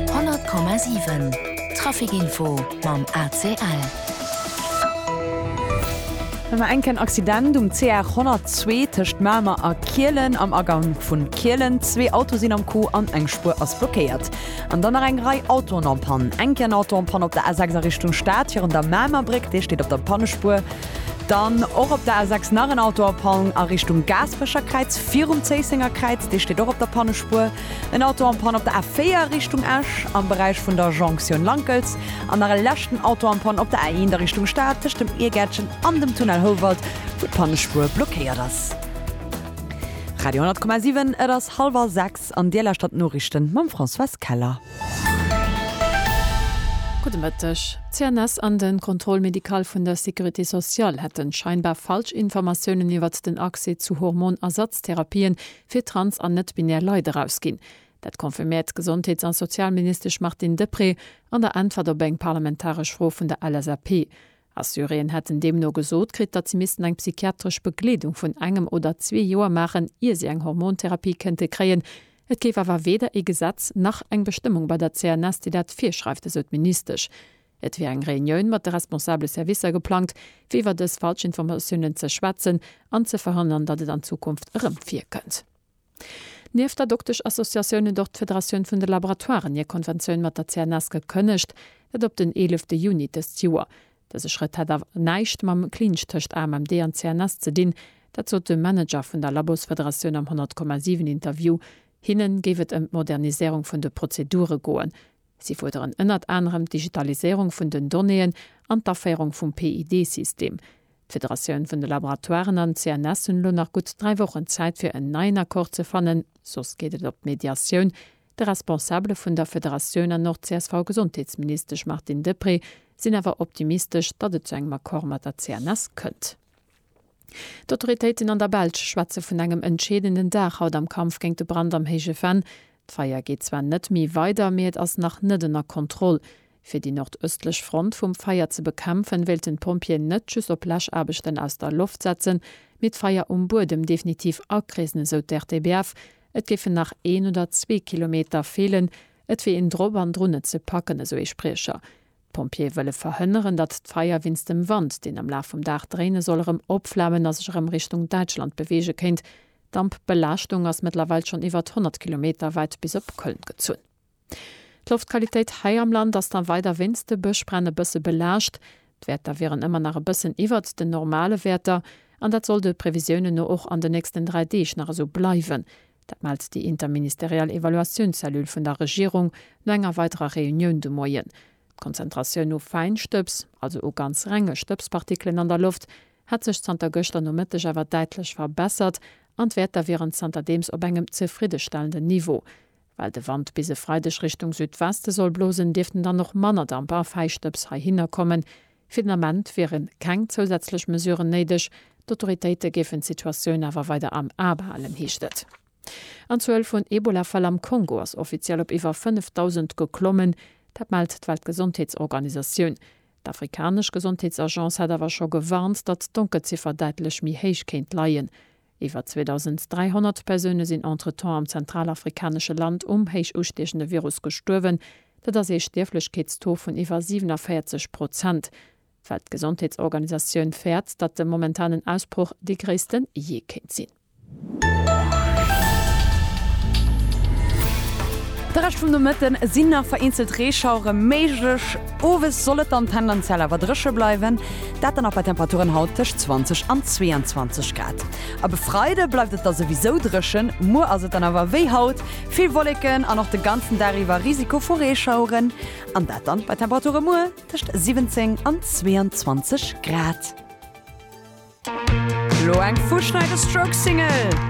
100,7 Trafic info mam ACL. Ëmmer enk en Accident um CR 102 tëscht Mamer a Kielen. Am Agang vun Kielen, zwee Auto sinn am Coup an eng Spuer ass blockéiert. An dann nach eng Rei Autoen am Pann. Enk en Auto am Pann op der A6 a Richtung Stad virun der Mamer Bréck, dee steet op der Pannespuer. Dann och op der A6 nach en Auto a Panne a Richtung Gaaspecherkräiz, virum Zéisséngerkräiz. Dee steet och op der Pannespuer. En Auto an Panne op der A4 Richtung Esch am Beräich vun der Jonktioun Lankels. An nach e leschten Auto an Panne op der A1 a Richtung Stad tëscht dem Iergäertchen an dem Tunnel Houwald, wou d'Pannespuer blockéiert ass. Radio 10,7 Et ass hallwer 6 an Dir lauschtert d'Noriichten mam Françoise Keller. Gudde Mëtteg. D'CNS an de Contrôle médical vun der Sécurité sociale hätte scheinbar falsch Informatiounen iwwert den Accès zu Hormon-Ersatztherapien fir trans an net-binär Leit erausginn. Dat confirméiert d'Gesondheets a Sozialministesch Martine Deprez an der Äntwert op eng parlamentaresch Fro vun der LSAP. A Syrien hätt en deemno gesot kritt, datt si missten eng psychiatresch Begleedung vun engem oder zwee Joer maachen, ier si eng Hormontherapie kéinte kréien. Et géif awer weder ee Gesetz nach eng Bestëmmung bei der CNS, déi dat virschreift, esou d'Ministesch. Et wier eng Reunioun mat de responsabele Servicer geplangt, fir iwwer dës Falschinformatiounen ze schwätzen an ze verhënnern, datt et an Zukunft erëm virkënnt. Nieft der Dokteschassociatioun huet och d'Federatioun vun de Laboratoiren hir Konventioun mat der CNS gekënnegt, dat op den 11 te Juni dëst Joer. Dëse Schrëtt hätt awer näischt mam Clinch tëscht AMMD an CNS ze dinn, dat sot de Manager vun der Labosfederatioun am 100 Komma 7 Interview. Hinne géif et ëm d'Moderniséierung vun de Prozedure goen. Si fuerderen ënnert anerem d'Digitaliséierung vun den Donnéeën an d'Aféierung vum PID-System. D'Federatioun vun de Laboratoiren an d'CNS hunn elo nach gutt dräi Wochen Zäit fir en neien Accord ze fannen, soss geet et op d'Mediatioun. De Responsabele vun der Federatioun an och d'CSV-Gesondheetsministesch Martine Deprez sinn awer optimistesch, datt et zu engem Accord mat der CNS kënnt. D'Autoritéiten an der Belsch schwätze vun engem entscheedenden Dag haut am Kampf géint de Brand am Héije Venn. D'Feier geet zwar net méi weider, mee et ass nach net ënner Kontroll. Fir déi nordëstlech Front vum Feier ze bekämpfen, wéilten d'Pompjeeën net just op Läschaarbechten aus der Loft setzen, mee d'Feier um Buedem definitiv akreesen, esou d'RTBF. Et géifen nach een oder zwee Kilometer feelen. Et wier een drop an drun, et ze packen, esou ee Spriecher. D'Pompjeeë wëlle verhënneren, datt d'Feier wéinst dem Wand, deen am Laf vum Dag dréine soll, erëm opflamen a sech erëm Richtung Däitschland beweege kéint. D'Dampbelaaschtung ass mëttlerweil schonn iwwert 100 Kilometer wäit bis op Köln gezunn. D'Loftqualitéit hei am Land ass dann weider wéinst de Bëschbränn e bësse belaascht. D'Wäerter wieren ëmmer nach e bëssen iwwert den normale Wäerter an dat soll de Previsiounen no och an den nächsten 3 Deeg nach esou bleiwen. Dat mellt déi interministeriell Evaluatiounzellule vun der Regierung no enger weiderer Reunioun de Moien. D'Konzentratioun u Fäinstëbs, also u ganz renge Stëbspartikelen an der Loft, hätt sech zanter gëschter Nomëtteg awer däitlech verbessert an d'Wäerter wieren zanterdeems op engem zefriddestellenden Niveau. Well de Wand bis e Freideg Richtung Südweste soll blosen, dierften dann och manner Damper a Fäischtdëps heihinner kommen. Fir den Ament wiere keng zousätzlech Mesuren néideg. D'Autoritéite géifen d'Situatioun awer weider am A behalen, heescht et. An d'Zuel vun Ebola-Fäll am Kongo ass offiziell op iwwer 5.000 geklommen. Dat mellt d'Weltgesondheetsorganisatioun. D'afrikanesch Gesondheetsagence hat awer scho gewarnt, datt d'Donkelziffer däitlech méi héich kéint leien. Iwwer 2.300 Persoune sinn entretemps am zentralafrikanesche Land um héich ustiechende Virus gestuerwen. Dat ass ee Stierflechkeetstaux vun iwwer 47 Prozent. D'Weltgesondheetsorganisatioun fäert, datt de momentanen Ausbroch dee gréisste jee kéint sinn. De Rescht vum Nomëtte sinn nach vereenzelt Reeschauere méiglech, owes soll et dann tendenziell awer dréche bleiwen. Dat dann nach bei Temperaturen haut tëscht 20 an 22 Grad. Ab e Freide bleift et da souwisou dréchen, muer ass et dann awer wéi haut, vill Wolleken an och de ganzen Dag iwwer Risiko vu Reeschaueren. An dat dann bei Temperature muer tëscht 17 an 22 Grad. Lo eng Fuschneiderstroke-Single!